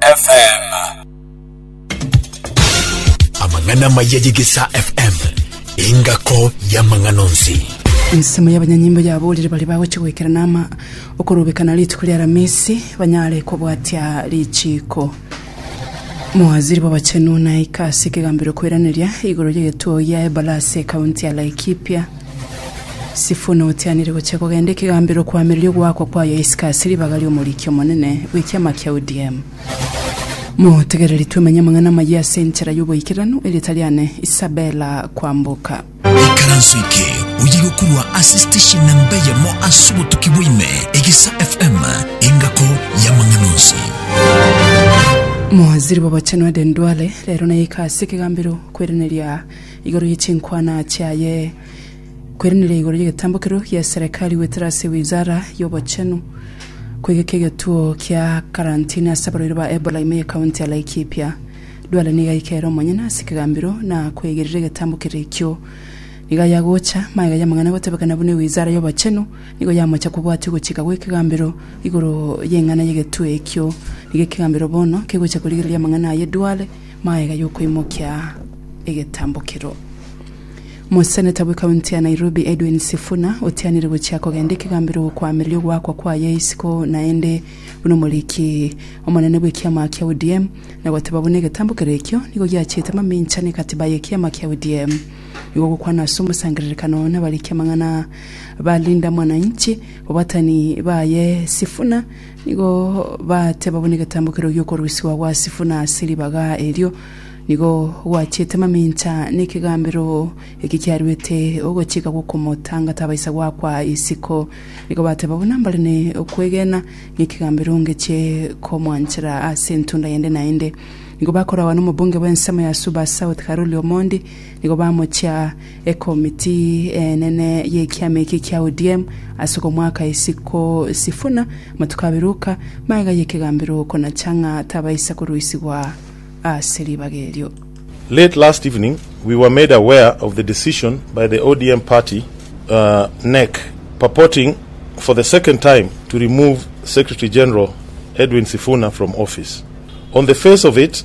FM. Amang'ana maya y'Egesa FM, engako y'amang'ana onsi. Ensemo y'abanyanyimbo yaborire baria bagochia goikera nama okorobekana rituko ria Aramisi banyare kobwatia richiiko. Mawaziri b'abachenu naika ase ekegambero kweraneria igoro y'egetuo gia Ebalasi ekaunti ya Laikipia. Sifuna otianire gochia kogenda ekegambero koamereria ogoakwa kwaye isiko ase ribaga ri'omoriki omonene bw'ekiama kia ODM. Motegereri twemenye amang'ana amayia ase enchera y'oboikeranu e rieta riane Isabella Kwamboka. Ikaranso eke oye gokorwa ase station namba eyemo ase obotuki bwaime, Egisa FM, engako y'amang'ana onsi. Mowaziri bw'Obochenu Aden Duale rero nayeka ase ekegambero kweraneria igoro ye chinkwana chiaye, kweranera igoro y'egetambokero gia Serekali goetera ase Wizara y'Obochenu, kwegeka egetuo kia karantini ase abarwaire ba Ebola ime ye County ya Laikipia. Duale nigo aika ere omonyene ase ekegambero na kwegerera egetambokero ekio. Nigo aye agocha, magega y'amang'ana agotebekana buna Wizara y'Obochenu nigo yamocha kobwatia ogochika gw'ekegambero igoro y'eng'ana y'egetuo ekio. Nigo ekegambero bono kegocha korigereria amang'ana aye Duale Magega y'okoimokia egetambokero. Moseneta bwe kaunti ya Nairobi Edwin Sifuna otianire gochia kogenda ekegambero gokoamereria ogoakwa kwaye isiko naende buna omoriki omonene bw'ekiama kia ODM na goteba buna egetambokero ekio nigo giachete amamincha n'ekatiba y'ekiama kia ODM igo gokwana ase omosangererekano nabariki amang'ana ba Linda Mwananchi obatani baye Sifuna Nigo bateba buna egetambo keria gi'okorwisigwa gwa sifu na ase ribaga erio nigo gwachiete mamincha n'ekegambero eki kiaruete ogochika gw'okomotanga tabaisa goakwa isiko. Nigo bateba buna mbare ne okwegena n'ekegambero ngechie komwanchera ase entunda yende naende. Nigo bakoragwa nomobunge bw'ensemo ya Suba South Karoli Omondi Nigo bamochia ekomiti enene y'ekiama eke kia ODM ase okomwaka isiko Sifuna matuko abere oka magega y'ekegambero okonacha ng'a tabaisa korusigwa ase ribaga erio. Late last evening we were made aware of the decision by the ODM party, NEC, purporting for the second time to remove Secretary General Edwin Sifuna from office. On the face of it,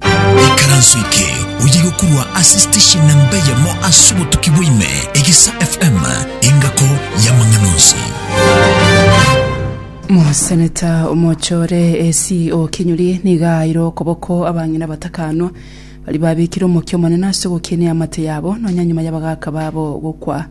Ekaranso eke oye gokurwa ase station namba eyemo ase obotuki bwaime, Egesa FM, engako y'amang'ana onsi. Moseneta omochore AC Okinyuri nigo aeire okoboko abang'ina batakanwa baria babekire omokia omonene ase ogokina eamate yabo nonya nyuma y'abagaaka babo gokwa.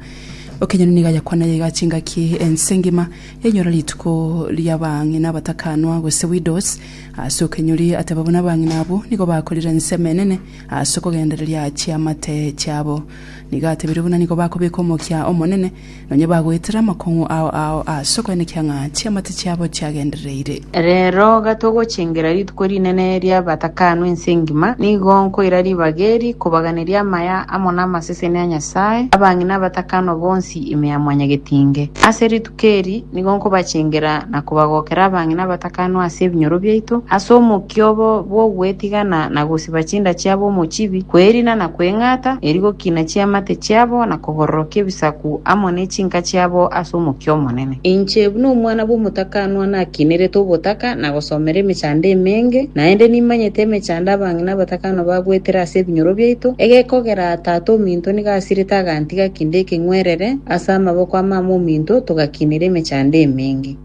Okinyuri nigo ayakwanire iga chingaki ense engima yainyora rituko ri'abang'ina batakanwa gose widows Ase okenyori ateba buna abang'ina abwo, nigo bakorire ensemo enene ase okogendereria chiamate chiabo. Nigo atebire buna nigo bakobeka omokia omonene, nonya bagoetera amakong'u ao ao ase okoenekia ng'a chiamate chiabo chiagendereire. Reero gatogochengera rituko rinene ri'abatakanu ense engima, nigo nkoira ribaga eri kobaganeria amaya amo namaseseni a Nyasae, abang'ina abatakanu bonsi ime ya Mwanyagetinge. Ase rituko. Keri, nigo nkobachengera na kobagokera abang'ina abatakanwa ase ebinyoro biaito, ase omokia obo bw'ogwetigana na gosiba chinda chiabo omochibi, kwerina na kweng'ata, eri gokina chiamate chiabo na kogororokia ebisaku amo ne chinka chiabo ase omokia omonene. Inche, buna omwana bw'omotakanwa, nakinerete obotaka na gosomera emechando emenge, naende nimanyete emechando abang'ina abatakanwa bagoetera ase ebinyoro biaito, egekogera Tata ominto nigo asirete agantiga kende ekeng'werere, Ase amaboko a mama ominto togakinire emechando emenge.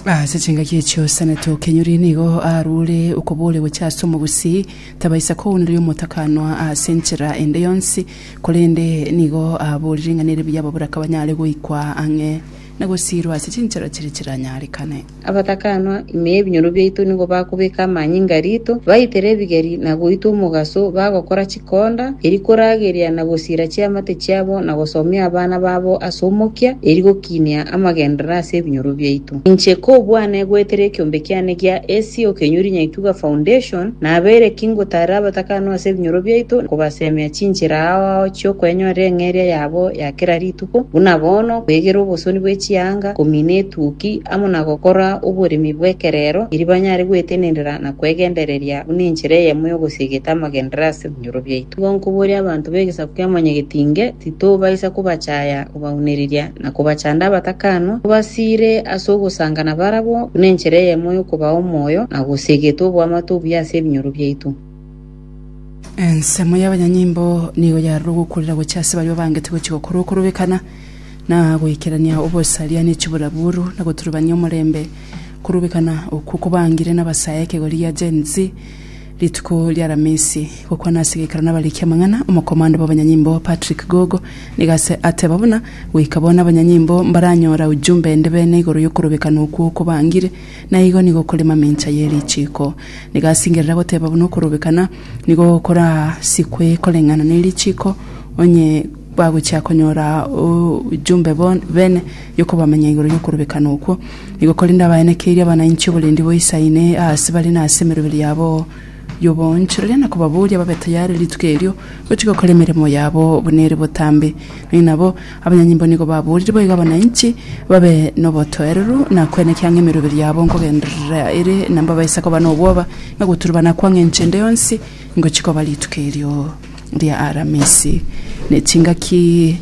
Ase chingaki echio Osana tokenyori nigo arure okobooria gochia ase omogusii, tabaisa kouneria omotakanwa ase enchera ende yonsi, korende nigo aboorire ng'a nere buya ababura kabanyare goikwa ang'e na gosiirwa ase chinchera chiria chiranyarekane. Abatakanwa, ime ebinyoro biaito nigo bakobeka amanyinga rito, baitere ebigeri na goitwa omogaso, bagokora chikonda, erio korageria na gosiira chiamate chiabo na gosomia abana babo ase omokia, erio gokiinia amagenderero ase ebinyoro biaito. Inche kobwane goetera ekiombe kiane gia Asia okenyori nyaituga foundation, nabeire ki ngotaarera abatakanwa ase ebinyoro biaito, kobasemia chinchera ao ao chi'okoenyorera eng'eria yabo ya kera rituko, isiko, buna bono kwegera obosoni bwe chianga, komina etuki, amo na gokora oboremi bw'ekerero, erio banyare gwetenenera na kwegendereria buna enchera eyemo y'ogosia egete amagenderero ase ebinyoro biaito. Igo nkoboria abanto b'egesaku kia Mwanyagetinge, titobaisa kobachaya, kobaunereria, na kobachanda abatakanwa, tobasiire ase ogosanga nabarabwo, buna enchera eyemo y'okobaa omoyo, na gosia egete oboamate obuya ase ebinyoro biaito. Ensemo y'abanyanyimbo nigo yarure ogokurera gochia ase baria babangete gochia gokora okorobekana na goikerania obosaria ne chiburaburu na goturubania omorembe. Okorobekana okwo kobangire nabasae ekegori gia Gen Z rituko ri'Aramisi. Gokwana ase geikaro nabariki amang'ana, omokomando bw'abanyanyimbo Patrick Gogo nigo ase ateba buna goika bono abanyanyimbo mbaranyora ujumbe ende bene igoro y'okorobekana okwo okobangire, na igo nigo kore mamincha ye richiko. Nigo asingerera goteba buna okorobekana nigo korasikwe koreng'ana ne richiko, onye bagochia konyora ojumbe bo- bene yokobamenya igoro yokorobekana okwo. Nigo korende abaenekeirie abanainchi oborendi boisaine aase bare na ase emeroberi yabo y'oboonchu, rirorio nakobaboria babe tayare rituko erio gochia gokora emeremo yabo buna ere botambe, na inabo Abanyanyimbo nigo baboorire boigo abananchi babe nobotoereru na kwenekea ng'a emeroberi yabo nkogenderera ere, na mbabaise koba nobwoba, na goturubana kwa ng'encho ende yonsi ngochia koba rituko erio ria Aramisi. Ne chingaki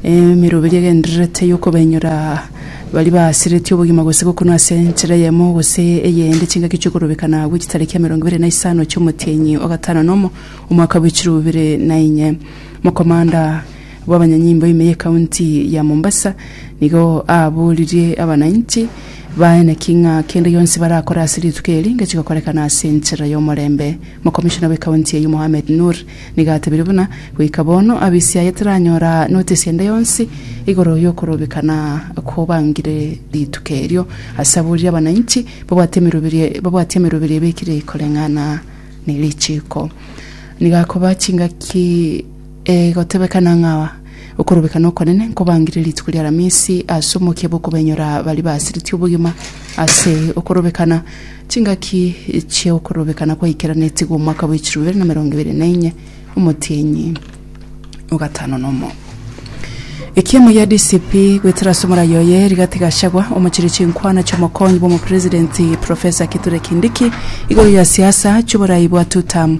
emeroberi egendererete y'okobainyora baria baasiretie obogima gose gokunwa ase enchera eyemo gose eyende, chingaki chi'okorobekana gwe chitariki emerongo ebere na isano chi'omotienyi o gatano nomo, omwaka bwe chiro bibere na inye. Mokomanda. bw'abanyanyimbo ime y'ekaunti ya Mombasa nigo aaboririe abanainchi baye naki ng'a kende gionsi barakore ase rituko eri ngechi gokorekana ase enchera y'omorembe. Mokomishona bw'ekaunti eyio Mohamed Nur nigo atebirie buna goika bono abisiaye teranyora notisi ende yonsi igoro y'okorobekana kobangire rituko erio ase aboririe abanainchi babwate emeroberio babwate emeroberio ebekire koreng'ana nerichiiko. Nigo akoba chingaki. Egotebekana ng'a okorobekana okonene nkobangire rituko ri'Alamisi ase omokia bw'okobenyora baria basiretie obogima ase okorobekana. Chingaki chi'okorobekana kwaikeranetigwe omwaka bwa echiro ibere na emerongo ebere na enye, omotienyi o gatano nomo. Ekiemo gia DCP goetera ase omorai oye, Rigathi Gachagua, omochirie chinkwana chi'omokonyi bw'omopresidenti Professor Kithure Kindiki igoro ya siasa chi'oborai bwa two term.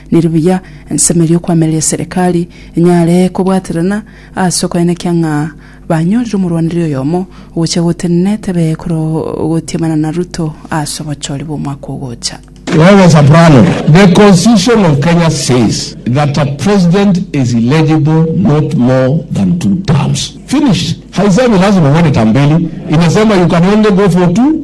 Neri buya ensemeria okoamereria eserekari enyare kobwaterana ase okoenekia ng'a banyorire omorwaneri oyomo ogocha gotenena tebe kore gotiamana na Ruto ase obochori bw'omwaka ogocha. Wewe Soprano, the constitution of Kenya says that a president is eligible not more than two terms. Finished. Haisemi lazima uende term mbili, inasema you can only go for two.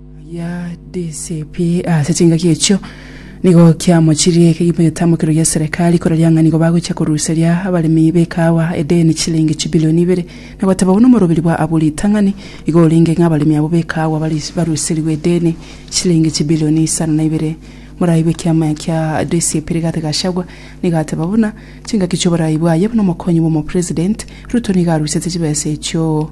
Ya DCP ase chingaki echio nigo kiamochirie ekegima getamokero gia serikali koraria ng'a nigo bagochia koruseria abaremi b'ekaawa edeni chilingi chibilioni ibere na goteba buna omorobiri bwa Abu Ritang'ani igo orenge ng'a abaremi abwo b'ekaawa baris- baruserigwe edeni chilingi chibilioni isano na ibere Morayi bw'ekiama kia DCP Rigathi Gachagua nigo ateba buna chingaki chioborayi bwaye buna omokonyi bw'omopresident Ruto nigo arusetie chibesa echio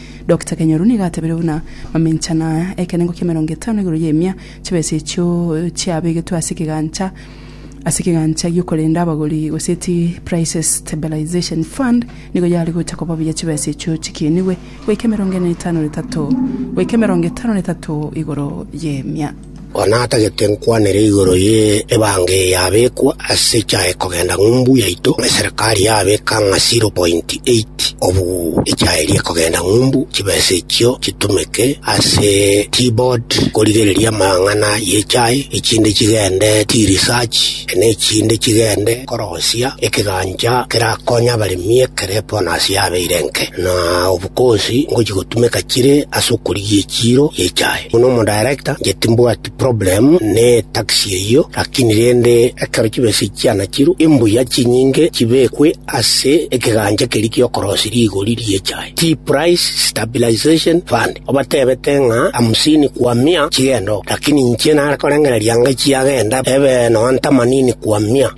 Doctor Kenyoru nigo atebeire buna maminchano aya, ekerengo ki'emerongo etano igoro y'emia chibesa echio chiabegetwe ase ekegancha ase ekegancha gi'okorenda abagori goseti Prices Stabilization Fund nigo yare gocha koba buya chibesa echio chikiinigwe goika emerongo ene na etano na etato goika emerongo etano na etato igoro y'emia. Igo natagete nkwanere igoro ye ebanga eye yabekwa ase echaye kogenda ng'umbu yaito eserekari yabeka ng'a 0.8 obu echaye eria ekogenda ng'umbu chibesa echio chitumeke ase teaboard korigereria amang'ana y'echaye echinde chigende tea research na echinde chigende korosia ekegancha kerakonye abaremi ekere bonus yabeire enke na obu Gose ngochia gotumeka chire ase okorigia echiiro y'echae. Buna omodaerekta, inche timbwati problem ne etaxi eyio, lakini rende ekero chibesa echi chianachirwe, imbuya chinyinge chibekwe ase ekegancha keria gi'okorosia rigori ri'echae, Tea Price Stabilization Fund. Obatebete ng'a hamsini kwa mia chigende oo, lakini inche nare korengereria ng'a chiagenda ebe nonya themanini kwa mia.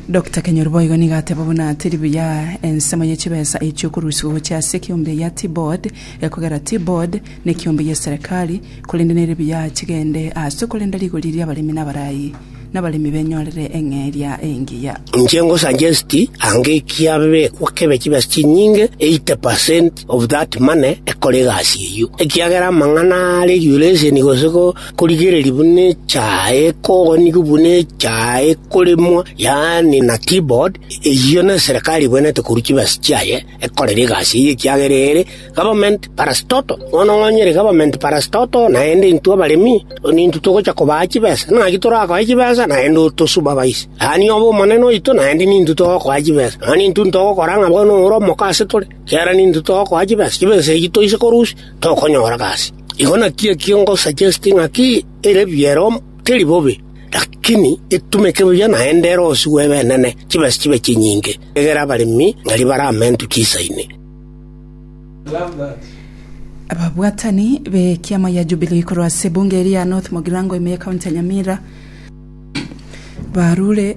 Dr. Kenyoro boigo nigo ateba buna teri buya ensemo ye chibesa echi okorusigwa gochia ase ekeombe ya T-board ekogera T-board na ekeombe ye serikali korende nere buya chigende ase okorenda rigori riabaremi nabarayi nabaremi benyorere eng'eria engiya. Inche nko suggest ange kiabekwa kebe chibesa chinyinge 80% of that money ekore egasi eyio ekiagera amang'ana are regulation gose ko korigereria buna echaye kogonigwa buna echaye koremwa, yaani na keyboard, eyio neserekari ebwenerete korwa chibesa chiaye ekorera egasi eyio ekiagera ere government parastatal. Bono onye ere government parastatal naende intwe abaremi nintwe togocha kobaa chibesa. Naki torakoe chibesa naende otosupervise. Yaani obe omonene oito naende nintwe togokoa chibesa. Nonya nintwe ntogokora ng'a bono ore omoka asetore, ekiagera nintwe togokoa chibesa. Chibesa echio toise korusia tokonyora gasi. Igo naki ekio ngosaggesti ng'aki ere biero teri bobe, lakini etumeke buya naende ere osigwe ebenene, chibesa chibe chinyinge, egere abaremi ng'aria bare ame intwe chisaine. Ababwatani b'ekiama gia Jubilee korwa ase ebunge eria ya North Mugirango ime ye county ya Nyamira barure.